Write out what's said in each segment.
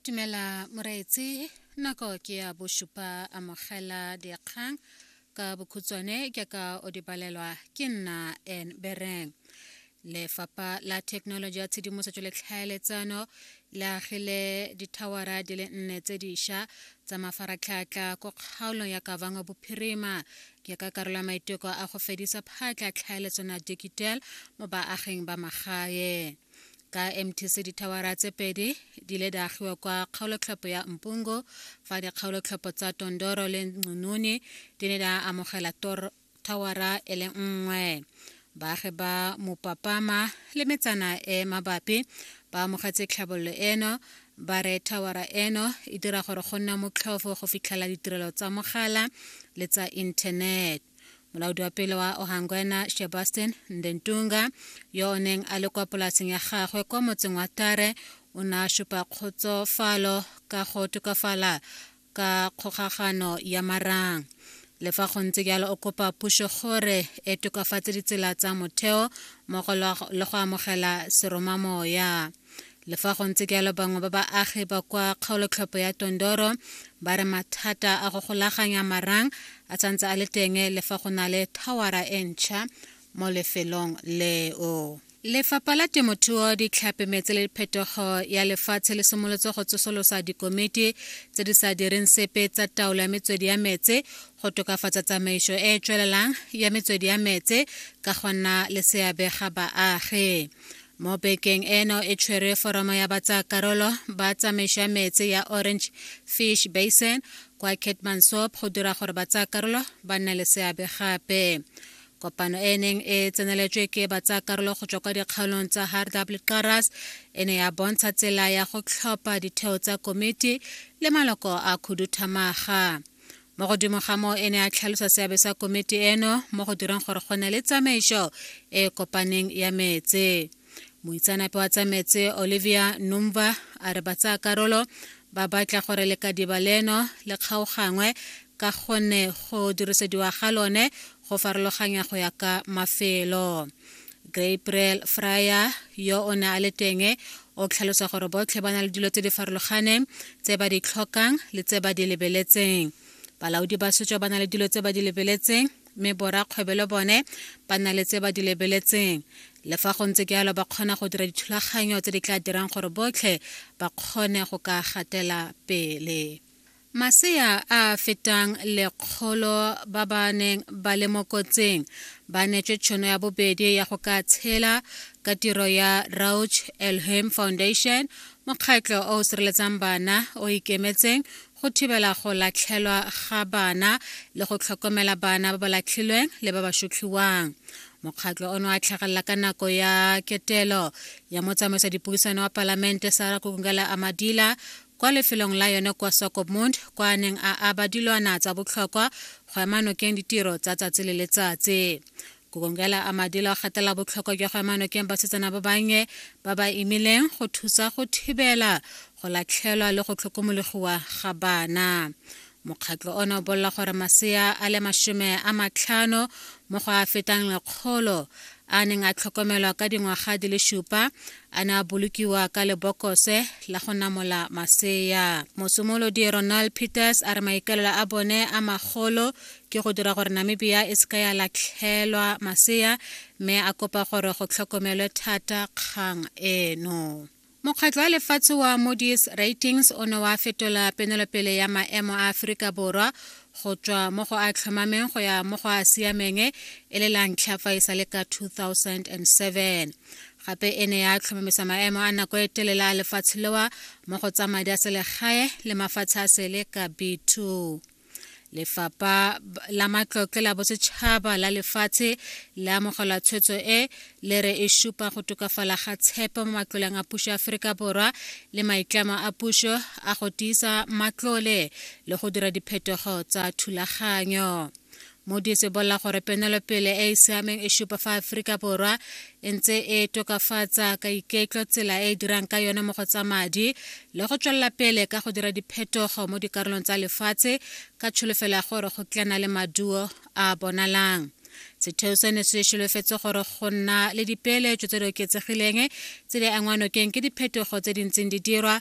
dumela moreetsi nako ke ya bosupa amogela dikgang ka bokhutswane ke ka o di balelwa ke nna en bereng lefapha la thekenoloji ya tshedimosetso le tlhaeletsano le agile dithawara di le nne tse diša tsa mafaratlhatlha ko kgaolong ya kavango bophirima ke ka karolo ya maiteko a go fedisa phatla tlhaeletsano ya digital mo baaging ba magaeng ka mtc dithawara tse pedi di ile di agiwa kwa kgaolotlhopho ya mpungo fa dikgaolotlhopho tsa tondoro le nqununi di ne di amogela thawara e le nngwe baagi ba mopapama le metsana e mabapi ba amogetse tlhabololo eno ba re thawara eno e dira gore go nna motlhofo go fitlhela ditirelo tsa mogala le tsa inthanete molaodi wa pele wa ohangwena sebastian ndentunga yo o neng a le kwa polaseng ya gagwe kwa motseng wa tare o ne a supa kgotsofalo ka go tokafala ka kgokagano ya marang le fa go ntse jalo o kopa puso gore e tokafatse ditsela tsa motheo mmogo le go amogela seromamoya le fa go ntse jalo bangwe ba baagi ba kwa kgaolotlhopho ya tondoro ba re mathata a go golaganya marang a santse a le teng le fa go na le thawara e ntšha mo lefelong leo lefapha la temothuo ditlhape metse le phetogo ya lefatshe le simolotse go tsosolosa dikomiti tse di sa direng sepe tsa taolo ya metswedi ya metse go tokafatsa tsamaiso e e tswelelang ya metswedi ya metse ka go nna le seabe ga baagi mo bekeng eno e tshwere foramo ya batsayakarolo ba tsamaiso ya metsi ya orange fish basin kwa ketmansop go dira gore batsayakarolo ba nne le seabe gape kopano e neng e tseneletswe ke batsayakarolo go tswa kwa dikgaolong tsa hardab le qaras e ne ya bontsha tsela ya go tlhopha ditheo tsa komiti le maloko a khuduthamaga mo godimo ga moo e ne a tlhalosa seabe sa komiti eno mo go direng gore go nne le tsamaiso e e kopaneng ya metse moitseanape wa tsa metse olivia numva a re batsaya karolo ba batla gore lekadiba leno le kgaogangwe ka gonne go dirisediwa ga lone go farologanya go ya ka mafelo Gabriel Fryer yo o ne a le teng o tlhalosa gore botlhe ba na le dilo tse di farologaneng tse ba di tlhokang le tse ba di lebeletseng balaodi ba setso ba na le dilo tse ba di lebeletseng mme borakgwebe le bone ba na le tse ba di lebeletseng le fa go ntse ke yalo ba kgona go dira dithulaganyo tse di tla dirang gore botlhe ba kgone go ka gatela pele Masea a a fetang lekgolo ba ba neng ba le mo kotsing ba netswe tšhono ya bobedi ya go ka tshela ka tiro ya Rauch Elhim Foundation, mokgatlho o o sireletsang bana o ikemetseng go thibela go latlhelwa ga bana le go tlhokomela bana ba ba latlhilweng le ba ba shutlhiwang. Mokgatlho ono a tlhagelela ka nako ya ketelo ya motsamaisa dipuisano wa palamente Sarah Kukungela Amadila kwa lefelong la yone kwa Swakopmund kwa a neng a aba dilwana tsa botlhokwa go ema nokeng ditiro tsa tsatsi le letsatsi. Gugongela a Madila o gatela botlhokwa jwa go ema nokeng basetsana ba bannye ba ba imileng go thusa go thibela go latlhelwa le go tlhokomologiwa ga bana. mokgatlo ona o bolela gore masea a le masome a matlhano mo go a fetang lekgolo a neng a tlhokomelwa ka dingwaga di le supa a ne a bolokiwa ka lebokose la go namola masea mosimolodi ronald peters a re maikaelelo a bone a magolo ke go dira gore namibia e seka ya latlhelwa masea mme a kopa gore go tlhokomelwe thata kgang eno mokgatlho wa lefatshe wa modis ratings o ne wa fetola penelopele ya maemo a aforika borwa go tswa mo go a tlhomameng go ya mo go a siameng e le la ntlha fa e sa le ka 2007 gape e ne ya tlhomamisa maemo a nako e telele a lefatshe lewa mo go tsa madi a selegae le mafatshe a sele ka b2 lefapha la matlotle la bosetšhaba la lefatshe le amogela tshwetso e le re e supa go tokafala ga tshepo mo matloleng a puso ya aforika borwa le maitlamo a puso a go tiisa matlole le go dira diphetogo tsa thulaganyo Moody's e bolela gore penelopele e e siameng e supa fa Aforika Borwa e ntse e tokafatsa ka iketlo tsela e e dirang ka yone mo go tsa madi le go tswelela pele ka go dira diphetogo mo dikarolong tsa lefatshe ka tsholofelo ya gore go tlana le maduo a bonalang setheo seno se solofetse gore go nna le dipeeletso tse di oketsegileng tse di angwanokeng ke diphetogo tse di ntseng di dirwa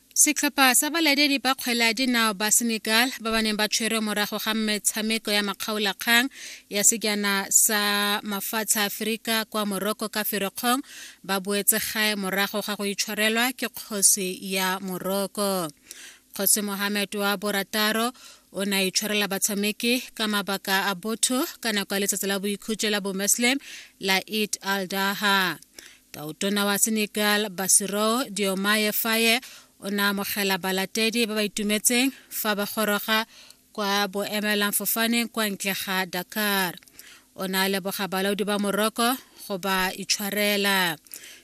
Setlhopha sa balatedi ba kgwele ya dinao ba Senegal ba ba neng ba tshwerwe morago ga metshameko ya makgaolakgang ya sejana sa mafatshe a Aferika kwa Morocco ka Ferikgong ba boetse gae morago ga go itshwarelwa ke kgosi ya Morocco. Kgosi Mohamed wa borataro o ne a itshwarela batshameki ka mabaka a botho ka nako ya letsatsi la boikhutso la bomuslim la Eid al-Daha. Tautona wa Senegal Bassirou Diomaye Faye o ne amogela balatedi ba ba itumetseng fa ba goroga kwa boemelamfofaneng kwa ntle ga Dakar. O ne a leboga balaodi ba Morocco go ba itshwarela.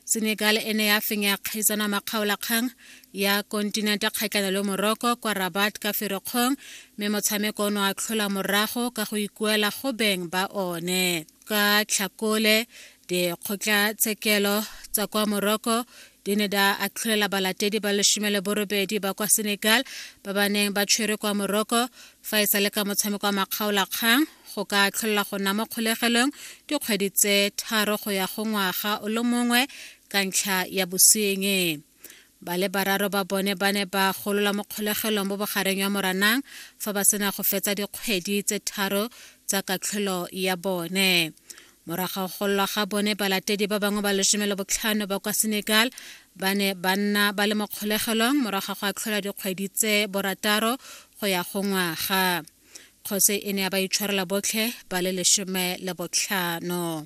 Senegal e ne ya fenya kgaisano makgaolakgang ya kontinente kgatlhanong le Morocco kwa Rabat ka Ferikgong mme motshameko o ne wa tlhola morago ka go ikuela go beng ba one. Ka Tlhakole, Dikgotlatshekelo tsa kwa Morocco di ne da atlholela balatedi ba lesome le borobedi ba kwa Senegal ba ba neng ba tshwere kwa Morocco fa e sale ka motshameko wa makgaolakgang go ka atlholela go nna mo kgolegelong dikgwedi tse tharo go ya go ngwaga o le mongwe ka ntlha ya bosenyi. ba le bararo ba bone ba ne ba golola mo kgolegelong mo bogareng ya moranang fa ba sena go fetsa dikgwedi tse tharo tsa katlholo ya bone morago go gololwa ga bone balatedi ba bangwe ba lesome le botlhano ba kwa senegal ba ne ba nna ba le mo kgolegelong morago go atlhola dikgwedi tse borataro go ya go ngwaga kgotsi e ne ya ba itshwarela botlhe ba le lesome le botlhano